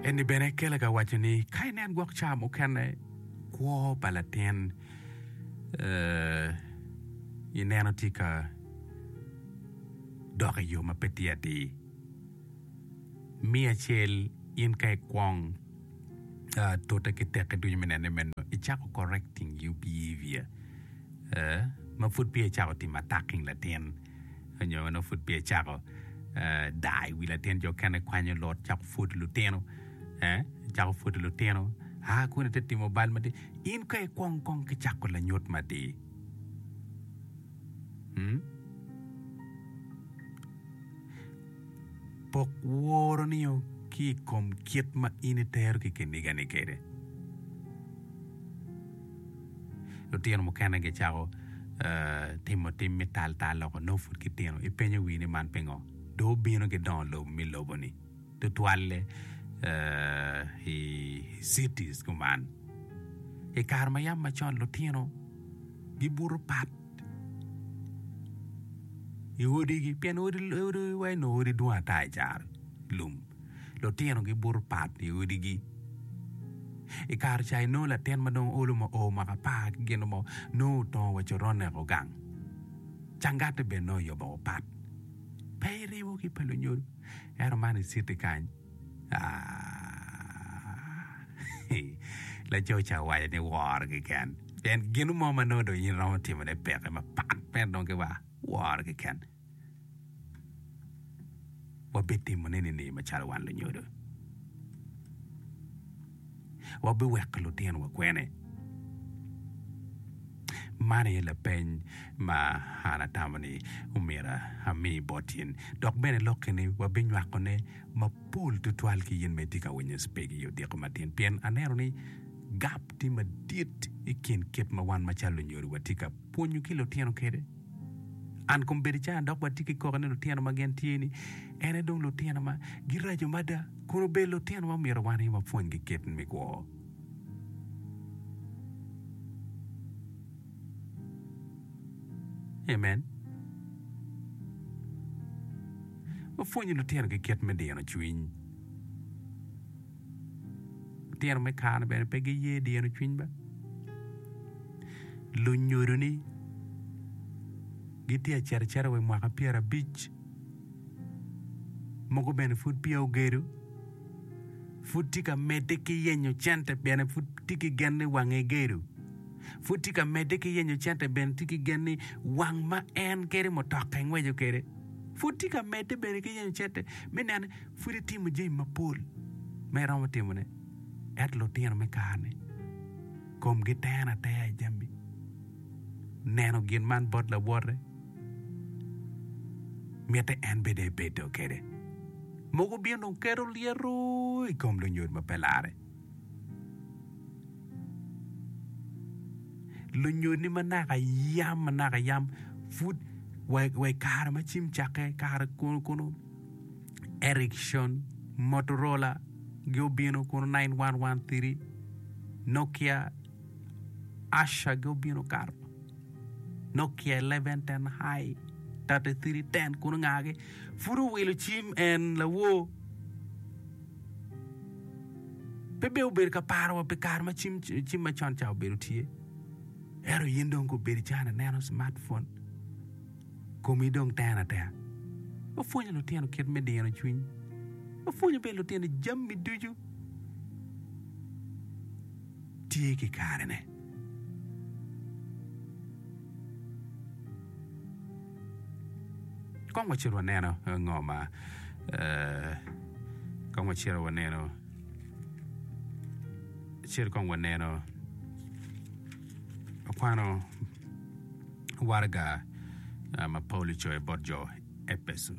Enni bene kele ka waco ni ka inen gwok ca mukene kwo pa latin eh, ineno tye ka dok i yo ma pe tye atir. Mi acel in ka ikwong ah, tute ki teki ducu me nene meno, icako correcting your behavior eh, ma pud peya icako timo attacking latin. onyo nongo pud peya ecako daa i wi latin jo okene kwanyo lot cako pwodo lutino eh cako pwodo lutino aa kun ite timo bal madit in ka ikwong kong ki cako lanyut madir mm? pok woroni-o ki i kom kit ma in itero ki kinigani kwede Lutino mukene gicako timo tim me taltal loko nongo pud gitino. Ipenyo wii ni man pingo? Dong obino ki dongo lobo me lobo-ni, tutwalle i cities kuman. I kare ma yam macon lutino gibuto pat i odigi pien odi wa nongo dwong ata i lum. lutino gibuto pat i odigi. I kare ca inongo latin ma dong olo ma oo mwaka apar ki gin mo nongo otongo wa coron eko gang. Cangati bene nongo oyobo woko pat. Pe iribo ki pa lunyodo. Ento man i citi kany, aah, laco ca owaco ni woro keken. Pien gin mo ma nongo dong in iromo timone peke mapat mere dong ki wa woro keken. wabitimo nini macalo wan lunyodo? Wabiweko lutinowa kwene? Man aye lapeny ma an atamo ni myero ami bot in. Dok bene lokki ni wabinywakone mapol tutwal ki in ma itye ka winyo cpg i odiko matin, pien aneno ni gap tye madit i kin kit ma wan macalo lunyodo watye ka pwonyo ki lutino kwede. An kom bedi cana dok watye ki koko ni lutino ma gin tye ni en aye dong lutino ma giraco mada kun obedo lutino ma myero wan aye wapwonygi kit me kwo. Amen. Wapwonyo lutino ki kit me dino cwiny. Litino me kare-ni bene pe giye dyeno cwiny be. Lunyodo-ni gitye ka cito acita wa i mwaka pyerabic, mogo bene pud peya ogedo, pud tye ka medde ki yenyo cente pien pud tye ki gen ni wange egedo, pud tye ka medde ki yenyo cente pien tye ki gen ni wang ma en kede mutoka engweco kwede pud tye ka medde bene ki yenyo cente me neno pud itimo jami mapol ma iromo timone. Ento lutino me kare-ni komgi tero atera i jami neno gin man bot lawote, mitte en bene ebedo kwede. Mogo bino dong keto lyeto i kom lunyodo ma pe larre. Lunyodni ma naka yam ma naka yam pud wa i kare ma cim cakke, kare kunu kunu, Ericsson, Motorola gi obino kun nine one one three, Nokia, Asha gi obino kato, Nokia eleven ten high, thirty three ten kun ngagi pud owilo cim en lawor. Pe bene obedo ka paro wa pi kare ma cim cim ma con ca obedo tye. Ento in dong ka obedo cani ineno smartphone. Komi dong tero atera. Wapwonyo lutino kit me dino cwiny. Wapwonyo bene lutino jami ducu tye ki karene. Kong wacit waneno ngo ma kong wacito waneno wacit kong waneno akwano waraga ma Paulo ocoyo bot jo Epeco.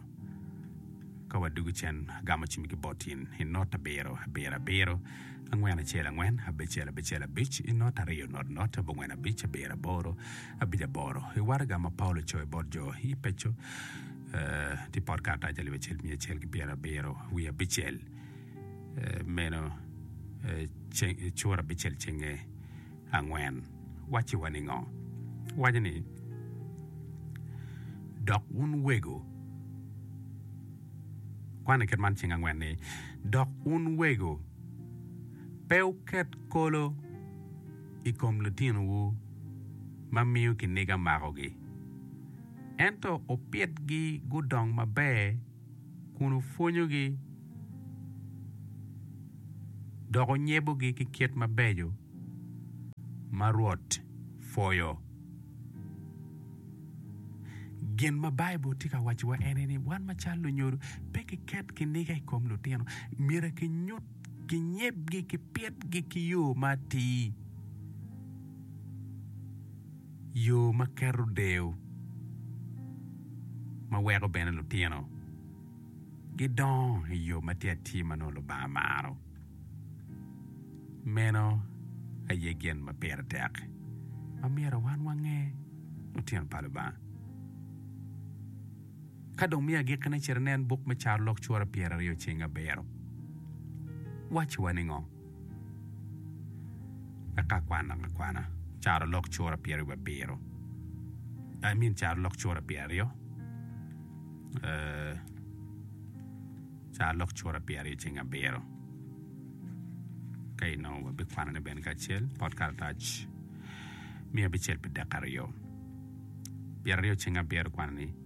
Ka wadwogo cen, agamo cim ki bot in i not abiro, abiro, abiro, angwen, acel, angwen, abicel, abicel, abic, i not aryo, not, not, abongwen, abic, abiro, aboro, abic, aboro. I waraga ma Paulo ocoyo bot jo Epeco, eh, tye pot karatac alip acel miya acel ki pyera abiro wiye abicel, eh, meno, eh, ceng, eh, cura abicel cenge. angwen wacci wa ningo? Waco ni, Dok wun wego, kwan i kit man cing angwen ni, Dok wun wego, pe wuket kolo i kom litinowu ma miyo kiniga makogi, ento wupitgi gudong maber, kun wupwonyogi dok wunyebogi ki kit mabeco ma Rwot pwoyo. Gin ma Baibul tye ka wacciwa en aye ni wan macalo lunyodo, pe kiket kiniga i kom lutino. Myero kinyut, kinyebgi, kipitgi ki yo ma atir. Yo ma keto deyo ma weko bene lutino gidongo i yo ma tye atir ma nongo Lubanga maro, meno aye gin ma pire tek ma myero wan wange lutino pa Lubanga. Ka dong miyo agikkine, cit inen buk me Carolok cura pyeraryo cing abiro. Wacciwa ningo? eka kwan akwana carolok cura pyeri wa biro I mean carolok cura pyeri aryo carolok cura pyeri aryo ceng abiro ka inongo wa bi kwanone bene kacel pot karatac miya abicel pi dek aryo pyeri aryo ceng abiro kwanoni.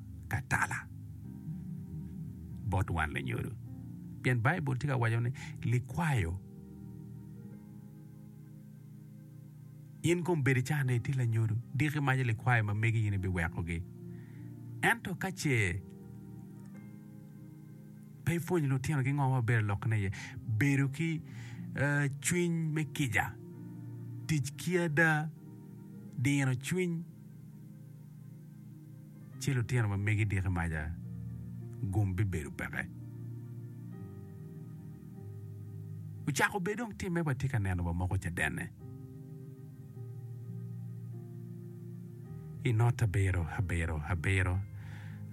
ka tala bot wan lunyodo. Pien Baibul tye ka waco ni, Likwayo, in kong bed icato ni itye lanyodo, diki imaco likwayo ma megi in ibiwekogi. Ento ka ce pe ipwonyo litinogi ngo ma bedo lokkine iye, bedo ki cwiny me kica, tic ki ada, dino cwiny. ci lutino ma megi diki maca gum bibedo peke. Ocako bed dong timme watye ka neno wa moko cadenne. I not abiro abiro abiro,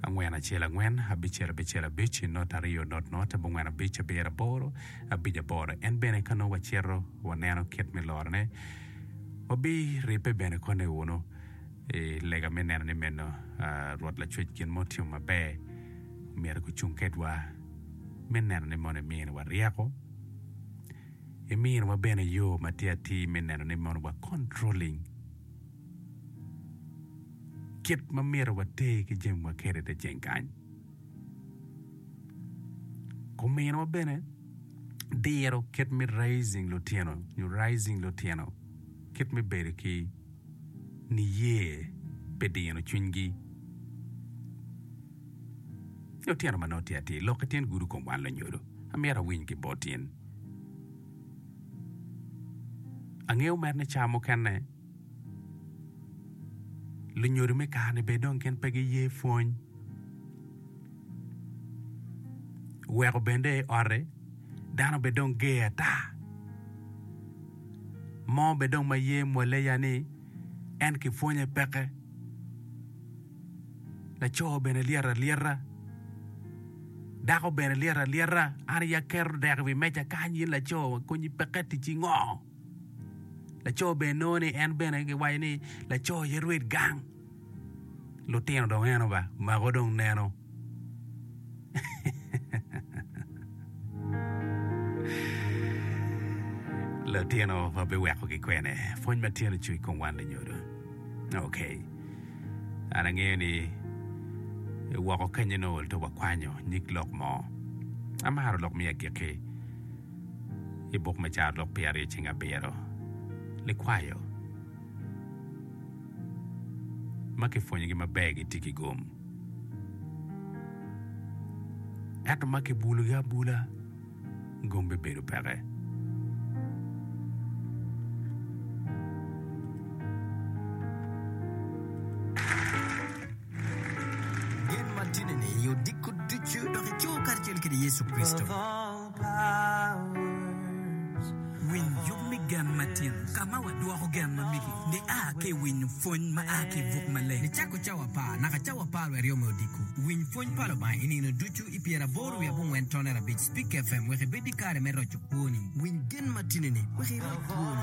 angwen acel angwen, abicel abicel abic, i not aryo not not, abongwen abic, abiro aboro, abic aboro. En bene ka nongo wacito waneno kit me lorone, wabiribbe bene koni wunu. I lega me neno ni meno, Rwot Lacwec gin mo otimo maber, omyero gucung kedwa me neno ni mono eminiwa ryeko, eminiwa bene yo matir atir me neno ni mono wa controlling kit ma myero water ki jamiwa kwede i te ceng kany. Ominiwa bene diro kit me raising lutino nyo raising lutino kit me bedo ki niye pe dino cwinygi. Ni otyeno ma nongo tye atir, lok ki tyen gudo kom wan lanyodo. Amyero awiny ki bot in. Angeyo mere ni ca mukene lunyodo me kare-ni bene dong gin pe giye pwony. Weko bene dong i otti dano bene dong ger ata. Mo bed dong ma ye mwale ya ni en ki pwonye peke. Laco bene lyeto alyeta. Dako bene lyeto alyeta. An i ya keto dek i wi meja kany in laco konyi peke ticci ngo? Laco bene nongo ni en bene giwaco ni laco aye rwed gang. lutino dong eno ba mako dong neno lutino wa biweko ki kwene pwony ma tyen ocung i kom wan lunyodo ok an angeyo ni woko kenyo nongo ol to wakwanyo nyig lok mo amaro lok me agikki i buk me carolok pyeraryo ceng abiro likwayo ma kipwonyogi maber gitye ki gom, ento ma kibulogi abula gom bibedo peke. Gen ma tye nene i yo diko ducu dok ico karacel kede Yecu Kricito. Winy yub me gen matino. Ka ma wadwoko gen ma migi nia ki i winyo pwony ma a ki i buk maleng nicako cawa apar naka cawa apar wiye aryo me odiko. Winy pwony pa Lubanga i nino ducu i pyera aboro wiye abongwen tone arabic. Speak FM wek ibed ki kare me roco kwoni. Winy gen matino-ni wek iroc kwoni.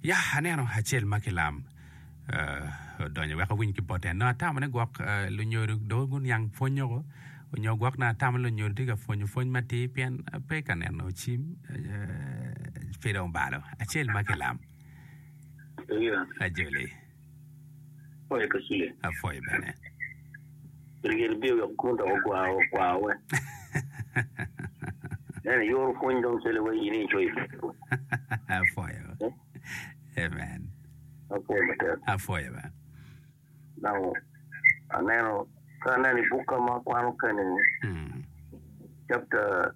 Ya, aneno acel ma kilam odonyo wek owiny ki bote. Nongo atamo ni gwok lunyodo dong guniang pwonnyoko onyo gwok nongo atamo ni lunyodo tye ka pwonyo pwony matir pien pe ka neno cim pe dong obalo. Acel ma kilam. Ajoli. Apwoyo Kaciya. Apwoyo bene. Rye libye wek gun dok ogwar ogwarwe. Nene yoro pwony dong cele wa in icoyo i Baibul. Apwoyo. Amen. Apwoyo matek. Apwoyo ba. Dong aneno ka aneno i bukka ma akwano keni Mm. chapter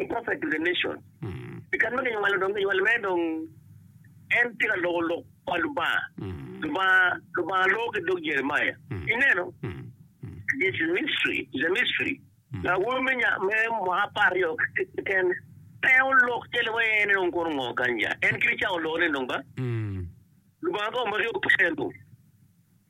I prophet to the nation I kan ma kinywalo dong kinywalo mere dong en tye ka loko lok pa Lubanga Lubanga Lubanga loko ki dog Jeremiah ineno this is mystery is a mystery awobi me nya me mwaka apar ryo keken pe olok calo wa en en kono ngo kanya en kit cawa oloko ne dong ba Lubanga ka omaki opye dong.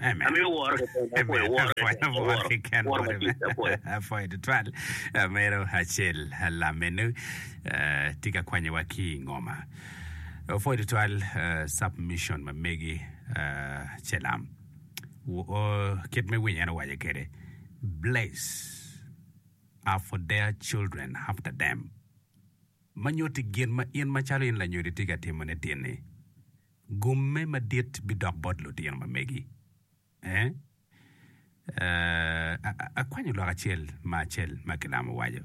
Amito woro keken, apwoyo woro keken, aworo, woro matit, apwoyo. Apwoyo tutwal amiro acel lam meno tye ka kwanyowa ki i ngoma. Apwoyo tutwal submission ma megi ce lam kit me winyo en owaco kede bless are for their children after them ma nyuti gin ma in macalo in lanyodi tye ka timone tin-ni. Gomme madit bidok bot lutino ma megi. Eh, eh, a- a- akwanyo lok acel ma acel ma kilamo waco.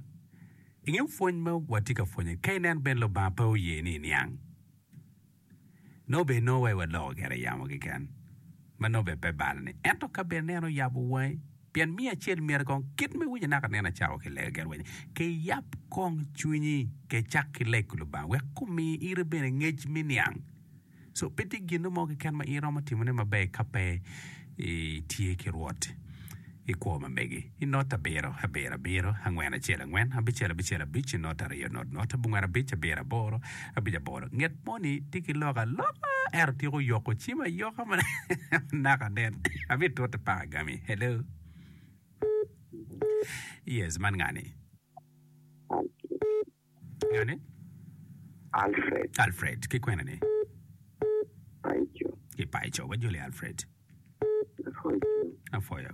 Ingeyo pwony ma watye ka pwonye, ka inen bene Lubanga pe oye ni iniang. Nongo bene inongo wa iwaloko gire yamo keken, ma nongo bene pe balani. Ento ka bene en oyabo wangi, Pien miyo acel myero kong kit me winyo naka nen acako ki lega gerweny, ke yap kong cwinyi ke cak ki lego Lubanga wek kumi ite bene ngec me niang. So pe tye gino mo keken ma iromo timo ne maber ka pe i tye ki Rwot i kwo ma megi. I not abiro, abiro, abiro, angwen, acel, angwen, abicel, abicel, abic, not aryo, not, not, abongwen, abic, abiro, aboro, Abic aboro, Nget moni tye ki lok aloka ento tyeko yoko cim ayoka manaka nen. Abitute paka gami. Hello? Yes, man ngani? Ngani? Alfred, Alfred, ki kwena ni? Paco, Ki Paco, wajoli Alfred. Paco, Afoyo.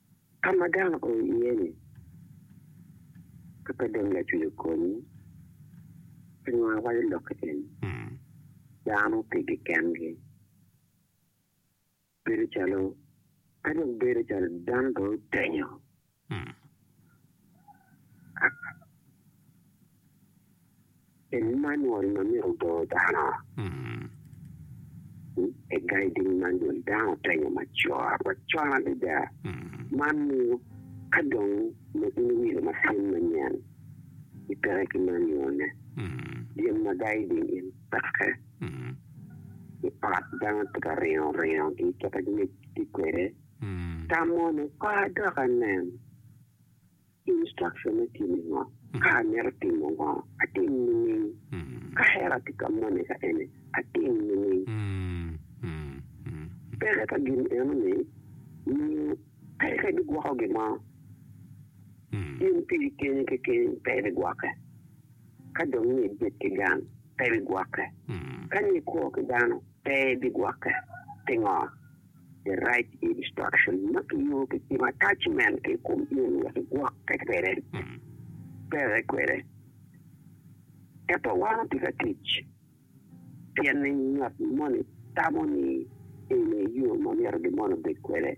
Ka ma dano o iye-ni, ka pe dong lacwiyo konyi, pe nongo awaco lok eni, dano pigi kengi. Bedo calo, ka dong bedo calo dano dong otenyo. Emmanuel ma myero obor dano. I guiding manual, dano otenyo macok, macon adada. Man miyo ka dong nongo in iwilo macin manyen, ipeke ki manual-le, gin ma guiding in peke. I ot, dano tye ka ringo ringo ki kit ma gitye kwede, tamo ni, Kor dok anen. Instruction me time ngo? Ka amito timo ngo, atim nining? Ka hera tye ka mone ka eni, atim nining? Peke pa gin eno ni miyo peke bigwoko gin mo. In piri keni keken pe ibigwoke. Ka dong ni ibit ki gang, pe ibigwoke. Ka ni ikwo ki dano, pe ibigwoke. Pingo? the right instruction ma kinyuto ki cim attachment ki i kom in wek igwokke kwede, peke kwede. Ento wan otye ka tic pien ni ngat moni tamo ni eni aye yo ma myero gin moni obed kwede,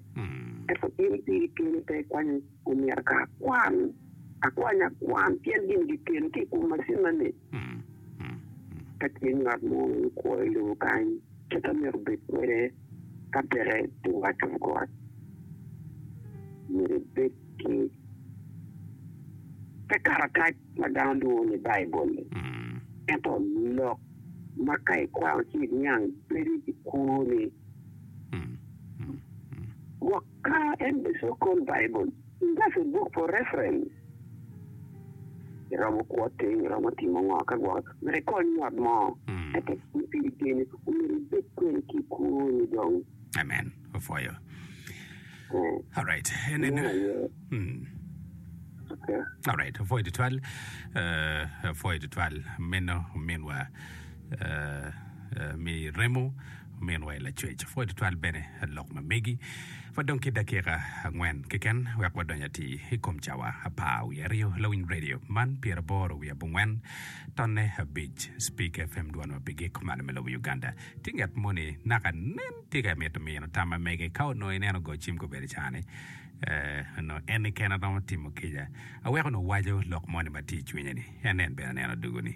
ento in piri keni pe ikwanyo omyero ka akwan, akwanya akwan pien gin gikelo ki i kom macinna-ni. Ka tye ngat mo ma kwo i lobo kany, kit amyero obed kwede ka peke tye wat kom got, myero ebed ki te karatac ma dano lwongo ni Baibul-li. Ento lok ma ka ikwano ci iniang bedo i kwoni. Ka en bene cok kol Baibul, inga pi book for reference. Iromo kwo teng, iromo timo ngo ka gwoko myero ikony ngat mo me tek pi piri kene, omyero ibed kwene ki kwoni dong. Amen. Opwoyo. Eh, All right. En en. meno aye. Mm. Okay. All right. Opwoyo tutwal. Eh, opwoyo tutwal. Meno minwa. mi remo ominwa i lacwec. Pwod tutwal bene lok ma megi. Wadong ki dakika angwen keken wek wadonyo atir i kom cawa apar wiye aryo Lawiny Radio man pyeraboro wiye abongwen tonne abic Speak FM dwan ma pigi kumalo me lobo Uganda. Tye nget moni naka nen tye ka mito mino tam ma mege ka onongo ineno go cim kobedi cani eh, onongo en keken romo timo kica aweko onongo waco lok moni ma tye i cwinye ni en nen bene neno dugu ni.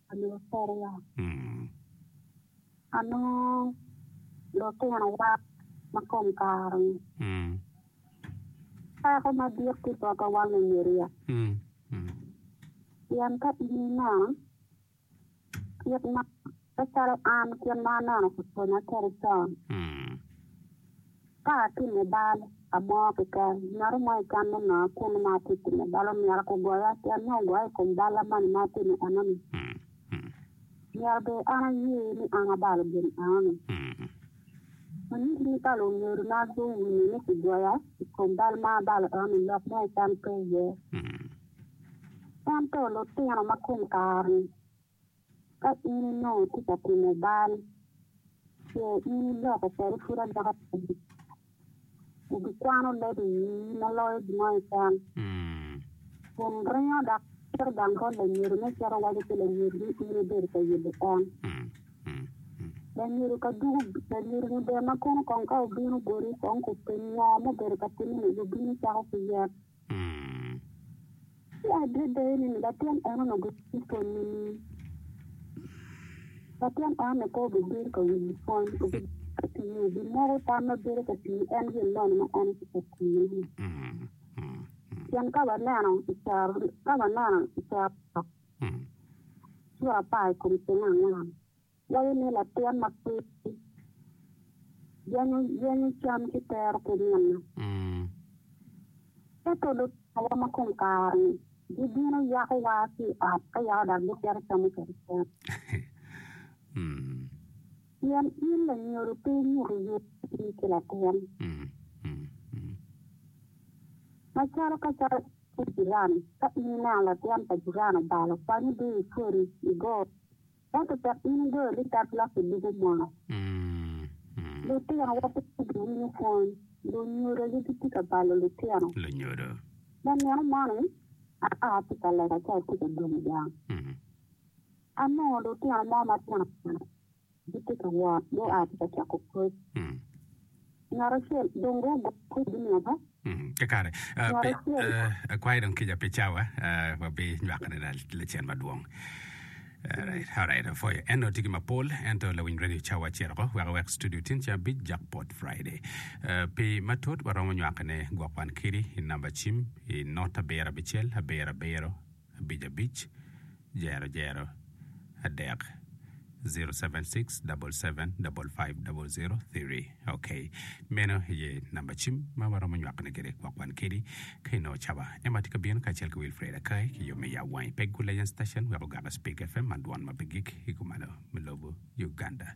Onongo piriwa. Onongo lutinowa ma kom kare-ni peko madit ki botwa wan lunyiriya. Pien ka in ineno kit ma, kit calo an kit ma aneno pi pwonya kwede con, Ka atimo bal amo keken, ngat mo i cam me nonga kunnu ma atye timo bal omyero aku goya pien nongo ogoya i kom bal amani ma atimo enoni? Myero bene an aye ni an abalo gin enoni? Me nyuto ni balo ongedo na guwinyo ni kigoya i kom bal ma abalo enoni lok mo i cam pe iye. Ento lutino ma kom kare-ni Ka in onongo itye ka timo bal, ce in iloko kwede pud aloka pa Lubanga, ibikwano leb i wii ma loyo gin ma icamo, kun ringo dok cito dang bot lanyodo me cito waco ki lanyodo ni in ibedo ka yelo en. Lanyodo ka dugo, lanyodo-ni ber ma kono kong ka obino boti, kong kupenyi ngo mubedo ka timme-ni, wubino cako ki yen. Ki adada ni, latin eno-nu gitye pwony me nino. Latin eno-ni pe obibedo ka winyo pwony, obibedo ka tiyo, obimoko tam ma bedo ka tiyo en gin moni ma en tye ka tiyone-ni. Pien ka waneno i caro, ka waneno i caro lok, cura apar i kom ceng angwen, Waco ni latin ma pud yenyo yenyo cam ki tero ki nino. Ento lutawa ma kom kare-ni gibino yako wa ki i ot ka yako dok gicito camo kwede cam. Pien in lanyodo pe inyuto yub ii ki latin. Macalo ka calo ki jirani, ka in ineno latin pa jirani obalo kwanyi dii i pwodi, igo. Ento cok in igoyo ni tat lok i buku mono. Lutinowa pe giwinyo pwony. Lunyodo gi gitye ka balo lutino. Lunyodo. Me nino moni, aka atye ka lega ci atye ka dong gang. Anongo lutino mo matino tino gitye ka wot gua ki ka coko koc. Ngat acel dong gugo kwedi naka. Mm, kakare. Uh, Ngat pe, acel. uh, akwayo dong kica pe cawa, uh, wabi nywakane la- lacen madwong. Alright, alright, afoyo. En otigi mapol, ento lawiny radio cawa acel oko, wek awek studio tin cen abic jak pot Friday. Uh, pi matut, waromo nywakane gwok wan kidi i namba cim i not abiro abicel, abiro abiro, abic abic jero jero adek zero seven six double seven double five double zero three ok meno aye namba cim ma waromo nywakone kwede gwok wan kedi ka inongo caba ema tye ka bino kacel ki Wilfred Akai ki yo me ya wangi pe Gulayan station wek ogaka Speak FM man dwan ma pe gik i kumalo me lobo Uganda.